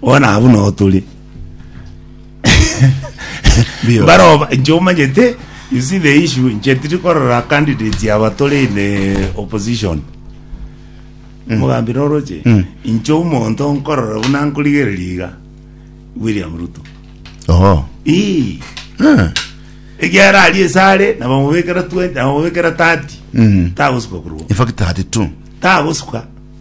Bono abwo nao tore. Mbio. Baroba inche omanyete you see the issue inche tiri korora candidate yaba tore in eh, opposition. Mugambi noroche. Mm. Inche omonto nkorora buna nkorigereria iga William Ruto. Oh. Ii. Ah. Egiara ari esare na bamubekera 20 na bamubekera 30. Mm. Tagosuka kurwa. In fact, 32. Tagosuka.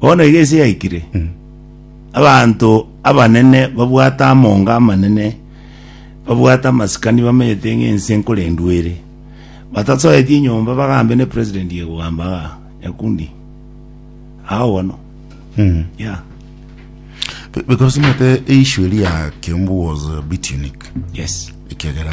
Bono iga ense yaikire, abanto abanene babwate amonga amanene, babwate amasikani bamenyete ng'a ense nkorendwa ere. Batasoeti enyomba bagambe ne president ye kogamba aa nyakundi. Ao bono. Yeah. Be- because mate eissue eri ya kiombu was a bit unique Yes. ekiagera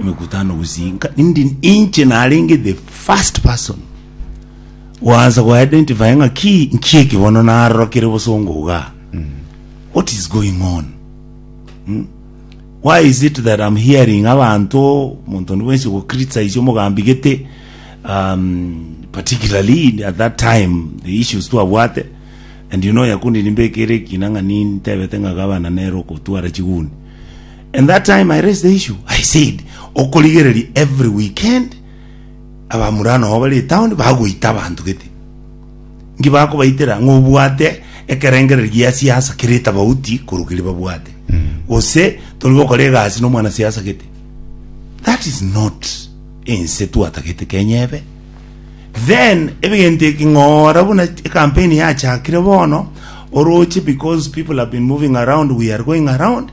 emekutano gusii nka indi inche narenge the first person gwansa go identify ng'a ki nki eki bono narorokire bosongo iga what is going on Hmm? why is it that i'm hearing abanto monto nibwensi go criticize omogambi gete um, particularly at that time the issues twabwate and you know yakundi nimbekere kinang'ani ntebete ng'a gabana nero kotwara chiguni And that time I raised the issue, I said, okorigereria every weekend abamura nao bare etown bagoita abanto gete. Nki bakobaitera ng'a obwate ekerengereri gia siasa kere etabauti korwa keri babwate. Gose tori gokora egasi na omwana siasa gete. That is not ense twatagete Kenya ebe. Then ebigente eking'ora buna campaign yachakire bono oroche because people have been moving around we are going around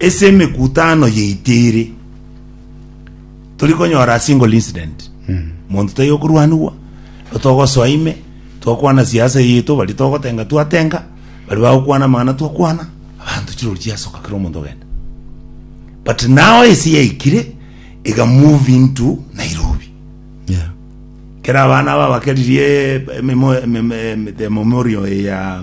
ase emekutano yaito ere tori konyora a single incident monto taiyo okorwanigwa togosoa ime twakwana siasa yaito bari togotenga twatenga bari bagokwana amang'ana twakwana abanto chirori chiasoka kera omonto ogenda but now ase yaikire ega move into nairobi Yeah. kera abana aba bakeririe ememo- ememe- emete- memorial ya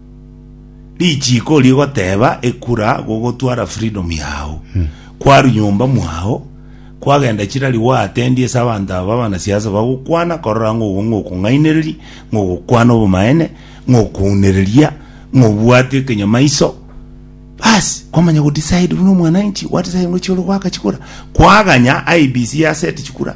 Richiiko rigoteba ekura gogotwara freedom yao kwaru nyomba mwao kwagenda chirari gwaatendie ase abanto aba abanasiasa bagokwana korora ng'a obo ng'okong'ainereria ng'ogokwana obomaene ng'okounereria ng'obwate ekenyamaiso basi kwamanya go decide buna omwananchi what is aye ngochia ore goaka chikura kwaganya IEBC yaseti chikura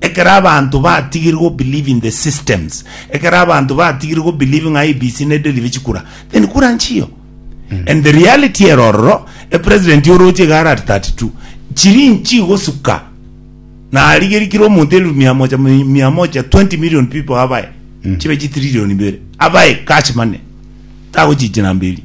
Ekero abanto batigire go believe in the systems, ekero abanto batigire go believe ng'a IEBC ne deliver chikura, then kura nchiyo. And the reality ero ororo, e president oroche iga are at 32, chiri nchi gosuka, na arigerie kira omonto elfu mia moja, mi- mia moja, 20 million people abae, chibe chitrillion ibere, abae cash money, tagochichina mberi.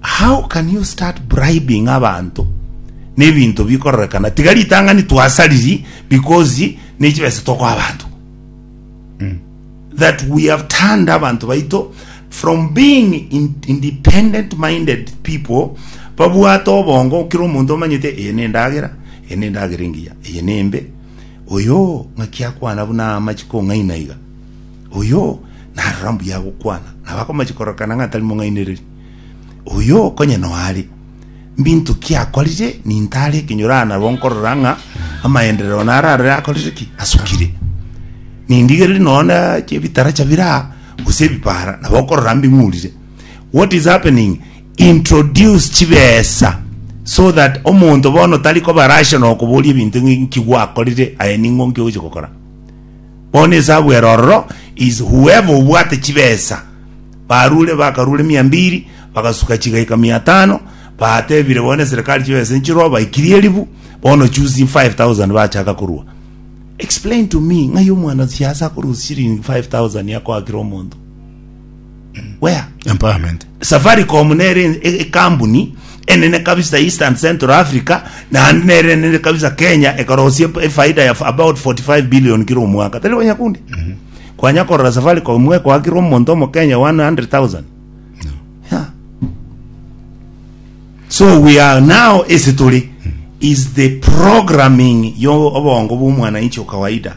How can you start bribing abanto nebinto bikororekana tiga ritang'ani twasa riri because nechibesa tokoa abanto mm. that we have turned abanto baito from being in, independent minded people babwate obongo kira omonto omanyete eye nendagera eye nendagera engiya eye nembe oyo ng'aki akwana buna amachi kong'aina iga oyo narora mbuya gokwana nabakomachi korokana ng'atari mong'ainereri Oyo konya noare, mbinto ki akorire? Nintare ekenyoro aa nabo nkorora ng'a amaenderero naro arore akorire ki? Asukire. Nindigereri noone chebitara chabire aa, gose ebipara, nabo okorora mbing'urire. What is happening? Introduce chibesa so that omonto bono tari koba rational okoboria ebinto ng'e nki gwakorire aye ning'o nki ogochia gokora. Bono esabu ere ororo is whoever obwate chibesa barure bakarure mia mbiri bagasuka chigaika mia tano batebire bono eserikali chibesa nchiroo baikirie eribu bono choose 5000 bachaka korua explain to me ng'ai omwana siasa akorusia shilingi 5000 akoakire omonto where empowerment safaricom nere e- ekambuni enene kabisa east and central africa naende nere enene kabisa kenya ekarosia ep- efaida ya f- about 45 billion kira omwaka tari banyakundi kwanya korora safaricom mwekoakira omonto omokenya 100000 yeah. so we are now ase tore is the programming yo obongo bw'omwananchi okawaida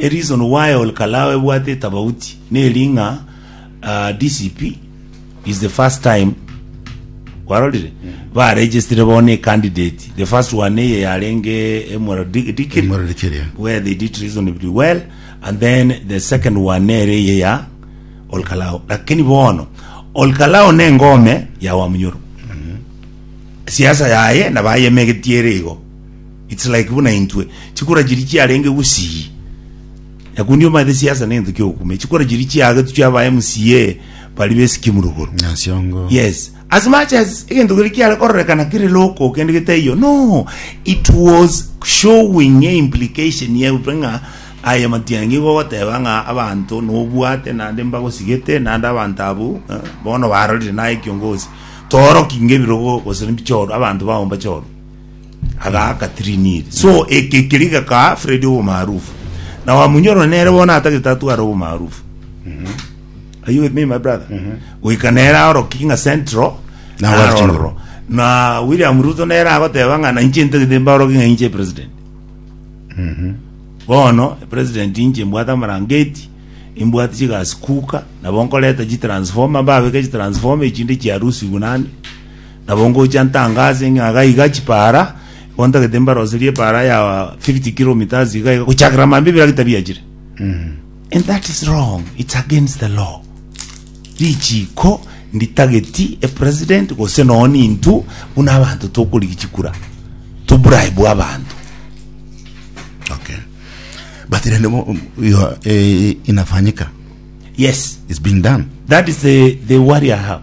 A reason why Ol Kalou ebwate etabauti neri ng'a DCP is the first time kwarorire ba registire bono a candidate the first one eye yarenge emwero di- dikiri Emwero dikiri, yeah. where they did reasonably well and then the second one nere eye ya Ol Kalou lakini bono Ol Kalou ne engome ya Wamunyoro siasa yaye nabayemegetie ere igo It's like buna intwe chikura chiria chiarenge gusii nakundi omanyete siasa nento kiogukumia chikura chiria chiagetu chia ba MCA bari besikimu rogoro Nasiongo. yes as much as egento kiri kiare kororekana kiri loko kende getaiyo no it was showing a implication yautwe ng'a aya matiangi igo ogoteba ng'a abanto nobwate nande mbagosigete nande abanto abwo eh, bono barorire naye kiongozi toroki ngebirogo gose mbichoro abanto bao mbachoro agaaka triniri so eke keri gakaa fredi obomaarufu na wamunyorora nere bono atagete atware obomaarufu are you with me my brother goika nere aoroki ng'a central Na na West arororo na william ruto nere agoteba ng'a nainche ntagete mbaoroki ng'a inche president bono president inche mbwate amarangeti imbwate chigasi kuka nabo nkoreta chitransforma mbabeke chitransforma echinde chiarusigwe naende Nabo ngocha ntangase ng'a iga iga chipaara, bono ntagete mbaroserie epaara ya 50 kilometres iga iga, gochakera mambia ebiara getabiachire. And that is wrong, it's against the law. Richiiko nditageti a president gose noo nintu buna abanto tokorigia chikura to bribe abanto. Okay. But rende bo- you are- eh, inafanyika. Yes, It's being done. that is the, the worry I have.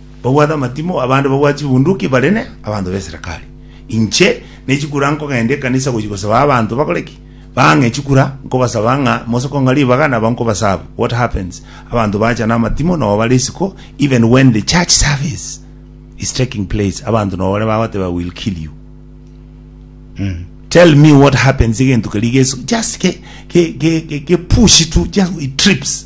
Babwate amatimo, abande babwate chibunduki, barine abanto b'eserekari. Inche ne chikura nkogenda ekanisa gochia gosaba abanto bakore ki? Bang'e chikura, nkobasaba ng'a mosoko ng'a ribaga nabo nkobasabe. What happens? Abanto bacha namatimo nobo bare isiko even when the church service is taking place abanto nobo bare bagoteeba I will kill you. Tell me what happens egento keria gesu just ke ke ke ke ke push tu just it trips.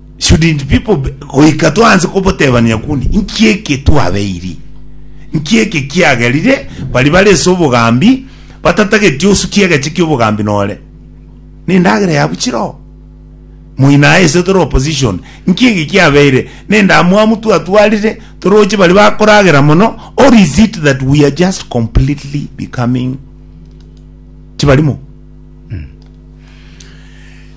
Shouldn't people be, goika twanse kobotebania kundi nki eke twabeiri nki eke kiagerire bari bare ase obogambi batatageti osukie egeche kiobogambi nore nendagera yabu chiro moina aye ase tore opposition nki eke kiabeire nendamwamu twatwarire toroche bari bakoragera mono or is it that we are just completely becoming chibarimo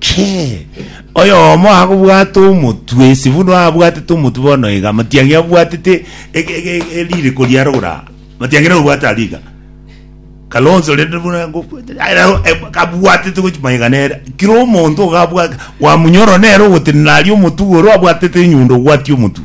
Kee! Oyomo akobwata omotwe, Sifunu abwatete omotwe bono iga, matiang'e abwatete ege- ege- ege- eririko ria rogora, matiang'e nabo obwate aria iga. Kalonzo rende buna ngobwate- aye nabo, eh, kabwatete gochi magega nere. Kera omonto iga abwate, kwamunyora nere ogotenena aria omotwe igoro abwatete enyundo ogwatia omotwe.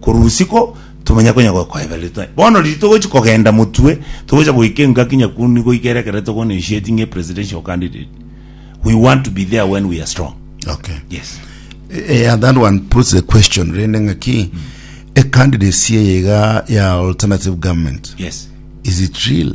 korwa usiku tomanya konya gokoeba rito bono riri togochi kogenda motwe togocha goika engaki nyakundu nigo goika ere ekero tokona initiate ng'e presidential candidate we want to be there when we are strong okay yes Eh, and that one puts the question rende ng'aki a candidacy eye iga ya alternative government yes is it real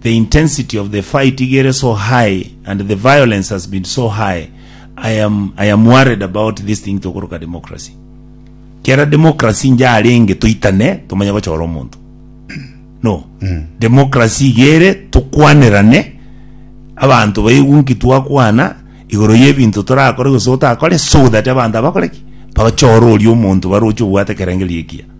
the intensity of the fight iga ere so high and the violence has been so high I am, I am worried about this thing tokoroka democracy kera democracy inche arenge toitane tomanye gochora omonto no democracy iga ere tokwanerane abanto baigu nki twakwana igoro y'ebinto torakore gose otakore so that abanto abakore ki bachore oria omonto baroche obwate ekerengerio ekiya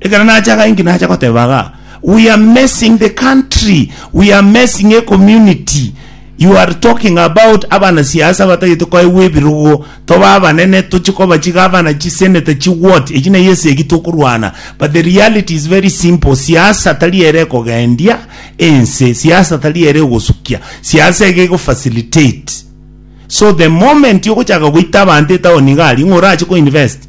Ekero nacha iga inki nacha goteba iga, we are messing the country, we are messing a community. You are talking about abana siasa batagete koegwa ebirogo, tobe abanene tochi koba chigavana, chiseneta, chiward, echi neye ase egi tokorwana. But the reality is very simple, siasa tari ere ekogendia ense, siasa tari ere egosukia, siasa iga ego facilitate. So the moment ogochaka goita abanto etaoni iga aria, ng'a orache ko invest,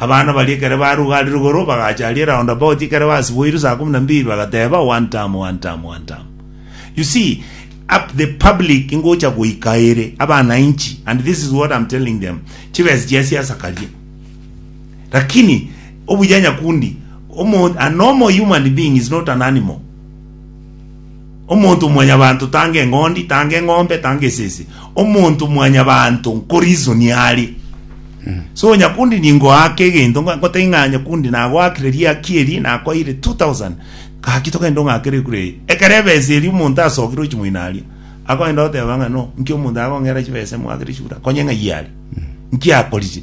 Abana baria ekero baruga aria rugoro, bagacha aria eroundabouti ekero basiboirwe saa kumi na mbiri, bagateba, One term, one term, one term. You see, up the public ingocha goika ere, abananchi, and this is what I'm telling them, chibesa chia siasa karia. Lakini, obuya nyakundi, omo, a normal human being is not an animal. Omonto mwanyabanto tanga eng'ondi, tanga eng'ombe, tanga esese. Omonto mwanyabanto nkorisonia are. So nyakundi ningoaka egento nga- ngotaki ng'a nyakundi nagoakire riaki eri nakoeire 2000 gaki togende ong'akere kure eye. Ekero ebesa eri omonto asokire ochimoina aria akoenda goteba ng'a no nki omonto agong'era chibesa moakire chibura konye ng'ai are nki akoriche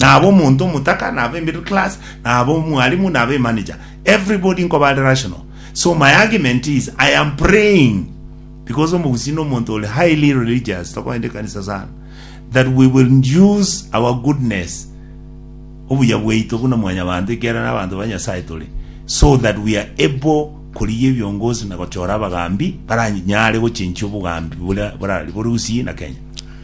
Naba omonto omotaka, naba emiddle class, naba omwalimu, naba emanager, everybody nkoba are rational. So my argument is I am praying because omogusii na omonto ore highly religious tokoenda ekanisa sana that we will use our goodness obuya bwaito buna mwanyabanto ekiagera n'abanto ba Nyasaye tore so that we are able korigia ebiongozi na gochora abagambi baranyare gochenchia obogambi bora- borari bore Gusii na Kenya.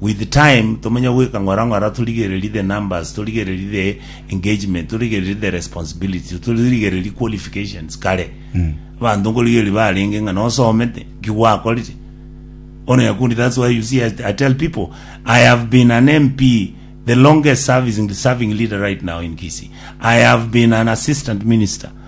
With time tomenye goika ng'ora ng'ora torigererie the numbers, torigererie the engagement, torigererie the responsibility, torigererie qualifications kare. Abanto nkorigereria barenge ng'a nosomete, ki gwakorire. Ono yakundi that's why you see I, I tell people I have been an MP the longest serving, serving leader right now in Kisii. I have been an assistant minister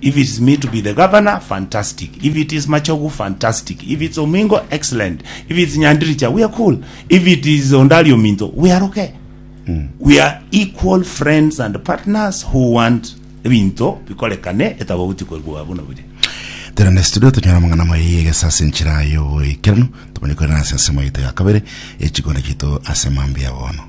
If it is me to be the governor, fantastic. If it is Machogu, fantastic. If it's Omingo, excellent. If it's Nyandiricha, we are cool. If it is Ondari Ominto, we are okay. We are equal friends and partners who want ebinto bikorekane etabaguti koigwa buna biri. Tera ne studio tonyora amang'ana amaiyi egesa ase enchera y'oboikeranu, tomanye korera ase ensemo yaito ya kabere y'echikone chiaito ase mambia bono.